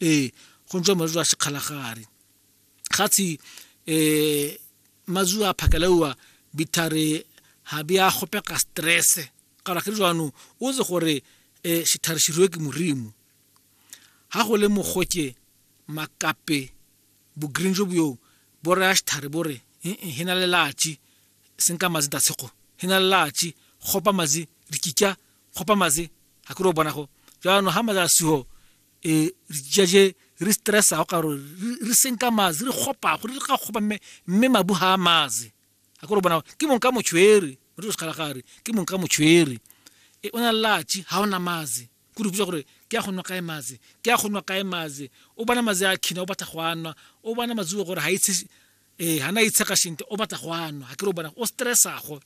ee go ntse mazulu a sekgalagare ga tshi um mazulu a phakalewa bithare ga be a gopega stress kara ke jaanong o tse gore um sethare seruwe ke morimo ga go le mogoke makape bo-green jo boyong bo raya sethare bo re he na le latši senka mazi tatshego he na le latši gopa mazi dikika kgopa maze ga kere o bona go jaanong ga maza sigo e re jaje re stressa go karo re senka maze re kgopa go re ga kgopa mme mme mabu ha maze ga kore o bona ke mong ka motshwere mo re sekgala gare ke mong ka motshwere e o na latši ga ona maze ko re botsa gore ke ya go nwa kae maze ke ya go nwa kae maze o bona maze a khina o batla go a nwa o bona mazuo gore ga itse ee ga na itshega shente o batla go a nwa ga ke re o bona o stressago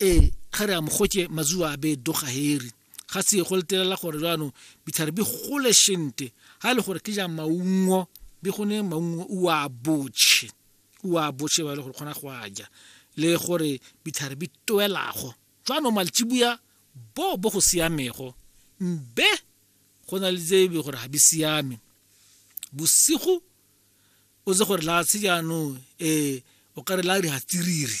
ee ga re a mogotse mazuwa a be doga heri ga se go letelela gore jaanong ditlhare di gole sente ga e le gore ke ja maungo di gone maungo o a botšhe o a botšhe ba e le gore kgona go a ja le gore ditlhare di toelago jaanong maltsibuya bo bo go siamego mbe go na le tsebe gore ga di siame bosigo o tse gore la se jaanong um o ka re la di hatsiriri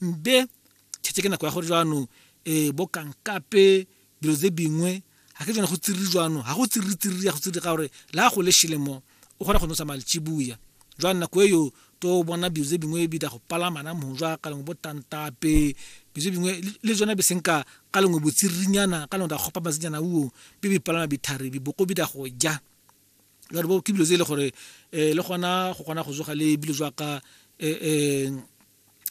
Mbe, Tjhetjhe ke nako ya gore jwano eh bo kankape dilo tse dingwe ga ke tsone go tsiriri jwano ga go tsiriri tsiriri ya go tsiriri ka gore le ga go le shele mo o kgona go nosa malitshibuya jwang nako e yo to bona dilo tse dingwe bi da go palama na mo jwa ka lengwe bo tantape dilo tse dingwe le jona be senka ka lengwe botsiririnyana ka lengwe da gopa masenyana uo bi bi palama bithari bi boko bi da go ja jwale bo ke dilo tse e le gore eh le gona go kgona go tsoga le bilo jwa ka eh eh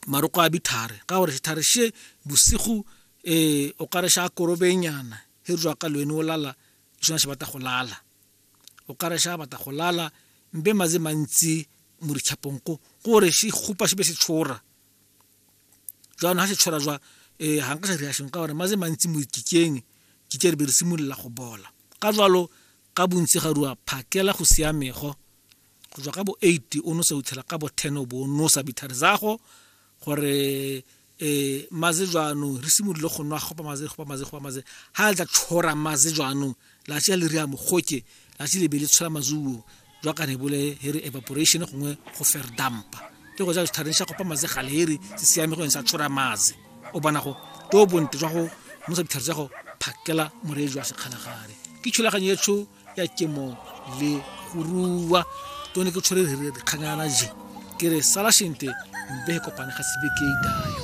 maroko a bithare ka gore sithare she bosigo um o kare sha korobenyana he re ka lwene o lala sona se batla go lala o kare sha batla go lala mbe maze mantsi mo ditšhapong ko gore se kgopa se be se tshora jaanong ga se tshora jwa um ga nka sa reaction ka gore maze mantsi mo dikikeng kike re be re simolola go bola ka jalo Ka bontsi ga rua phakela go siamego go tswa ka bo 8 o nosa uthela ka bo 10 o bo nosa bithare zago gore e maze jwanong re simolole go nwa gopa maze gopa maze gopa maze ha le tla tshora maze jwanong la tšea le ria mogoke la tše le be le tshola mazuo jwa ka ne bole here evaporation gongwe go fer dampa ke go ja dithareng sha gopa maze gale here se siame go ntse a tshora maze o bona go to bontle jwa go mosa ditlhare tsa go phakela moreetsi wa sekgalagare ke thulaganyo e tsho ya kemo le go rua to ne ke tshwere re re kganyana je ke re sala shente mbe e kopane ga sebe ke idayo